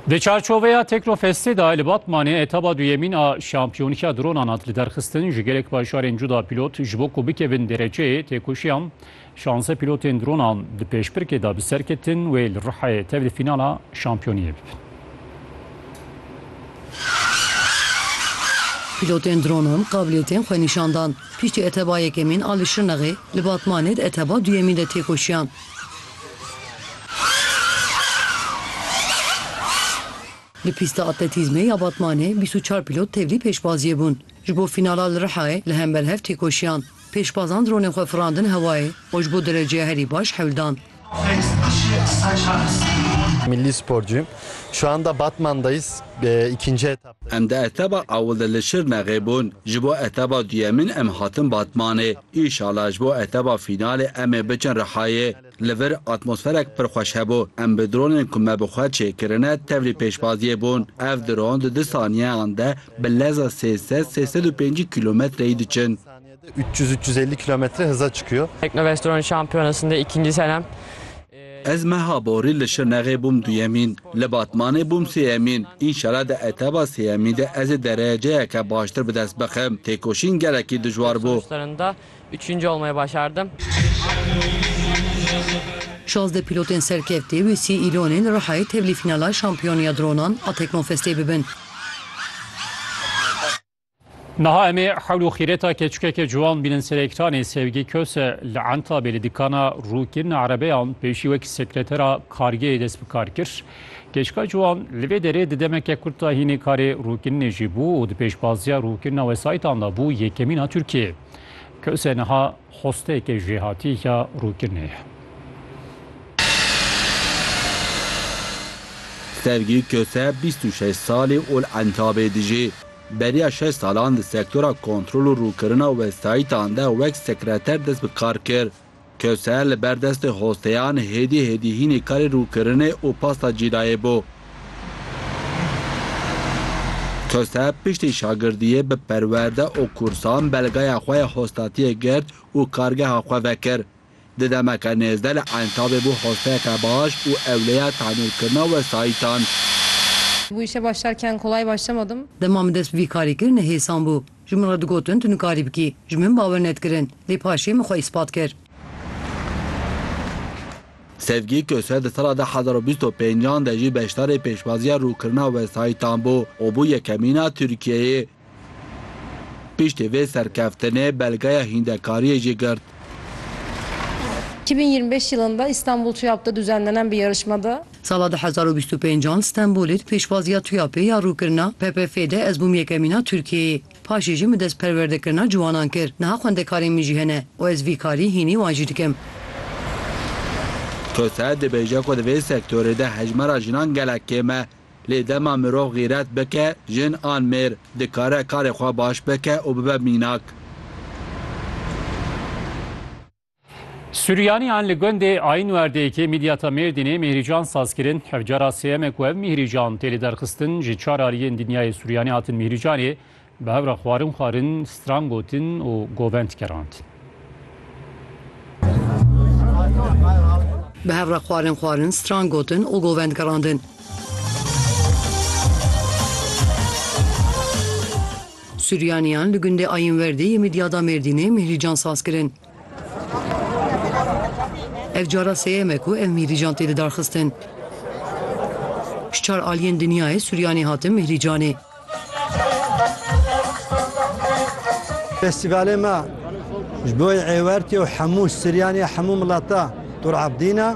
Di çarçoveya Tekrofestê de li Batmanê etaba duyemîn a şampiyonîya dronan hat li derxistin ji gelek bajarên cuda pîlot ji bo ku bikevin dereceyê têkoşiyan şanze pîlotên dronan di pêşbirkê de bi ser ketin wê li Rihayê tev li fînala şampiyoniyê bibin. Pîlotên dronan qabiliyetên xwe nîşan dan. Piştî eteba yekemîn a li Şirnexê, li Batmanê di eteba duyemîn de têkoşiyan. Li pîsta atletîzmê ya Batmanê bîst û çar pîlot tevlî pêşbaziyê bûn. Ji bo fînala li Rihayê li hember hev têkoşiyan, pêşbazan dronên xwe firandin hewayê û ji bo dereceya herî baş hewl dan. Milli sporcuyum. Şu anda Batman'dayız. İkinci etap. Em di eteba ewil de li Şirnexê bûn, ji bo eteba duyemîn em hatin Batmanê. Înşala ji bo eteba fînalê em ê biçin Rihayê. Li vir atmosferek pir xweş hebû. Em bi dronên ku me bi xwe çêkirine tevlî pêşbaziyê bûn. Ev dron di du saniyeyan de bi leza sê sed sê sed û pêncî kîlometreyî diçin. 300-350 kilometre hıza çıkıyor. Teknovestor'un şampiyonasında ikinci senem. Ez meha borî li Şirnexê bûm duyemîn, li Batmanê bûm sêyemîn, înşela di etaba sêyemîn de ez ê dereceyeke baştir bi dest bixim. Têkoşîn gelekî dijwar bû. Şazdeh pîlotên serkevtî wê sî Îlonê li Rihayê tevlî fînala Şampiyon ya Dronan a Teknofestê bibin. Niha em ê hewl û xîreta keçikeke ciwan bînin ser ekranê Sevgi Köse li Entabê li dikana rûkirina erebeyan pêşî wek sekretera kargehê dest bi kar kir. Keçika ciwan li vê derê di demeke kurt de hînê karê rûkirinê jî bû û di pêşbaziya rûkirina wesayîtan de bû yekemîna Tirkiyeyê. Köse niha Xwesteke jêhatî ya rûkinê ye. Sevgi Köse bîst û şeş salî û li Entabê dijî. Beriya şeş salan di sektora kontrol û rûkirina wesayîtan de wek sekreter dest bi kar kir. Köse li ber destê hosteyan hêdî hêdî hînî karê rûkirinê û pasta cîrayê bû. Tose piştî şagirdiyê bi perwerde û kursan belgeya xwe ya hostatiyê girt û kargeha xwe vekir. Di demeke nêzde li Entabê bû hosteyeke baş û ewleya tenûrkirina wesayîtan. Dema min dest bi vî karî kir, nihêsan bû. Ji min re digotin tu nikarî bikî. Ji min bawer nedikirin. Lê paşê min xwe îspat kir. Sevgi Köse di sala du hezar û bîst û pênc an de jî beşdarê pêşwaziya rûkirina wesayîtan bû û bû yekemîna Tirkiyeyê. Piştî vê serkeftinê belgeya hîndekariyê jî girt. Iki bin yirmi beş yılında İstanbul TÜYAP'da düzenlenen bir yarışmada Sala du hezar û bîst û pênc an Stenbolê di pêşwaziya TUYAPê ya rûkirina PPF'ê de ez bûm yekemîna Tirkiyeyê. Paşê jî min dest perwerdekirina ciwanan kir. Niha xwendekarên min jî hene û ez vî karî hînî wan jî dikim. Koser dibêje ku di vê sektorê de hejmara jinan gelek kêm e. Lê dema mirov xîret bike, jin an mêr, dikare karê xwe baş bike û bibe mînak. Suriyaniyan li gundê Aynwerdê yekê Midyata Mêrdînê mîhrîcan saz kirin. Ev cara sêyem e ku ev mîhrîcan tê lêderxistin. Ji çar aliyên dinyayê Suriyani hatin mîhrîcanê bi hev re xwarin xwarin, stran gotin û govend kerand. Bi hev re xwarin xwarin, stran gotin û govend gerandin. Suryaniyan li gundê Ayinwerdê yê Midyada Mêrdînê mîhrîcan saz kirin. Ev cara sêyem e ku ev mîhrîcan tê didarxistin. Ji çar aliyên dinyayê Suryanê hatin mîhrîcanê. Festîvalê me ji bo Êwertê û hemû Suryanê ya hemû milata Tur Abdîn e.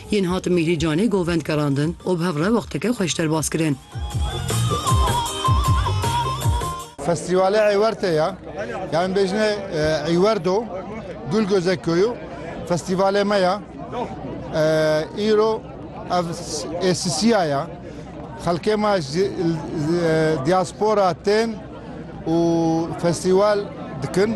Yên hat Mîhrî Canê Govend gerandin û bi hev re wexteke xweş derbas kirin. Festîvalê Eywertê ye. Ya em bêjine Eywerdo, Gul Göze Köyü festîvalê me ye. Îro ev êsisiya ye. Xelkê me ji diaspora tên û festîval dikin.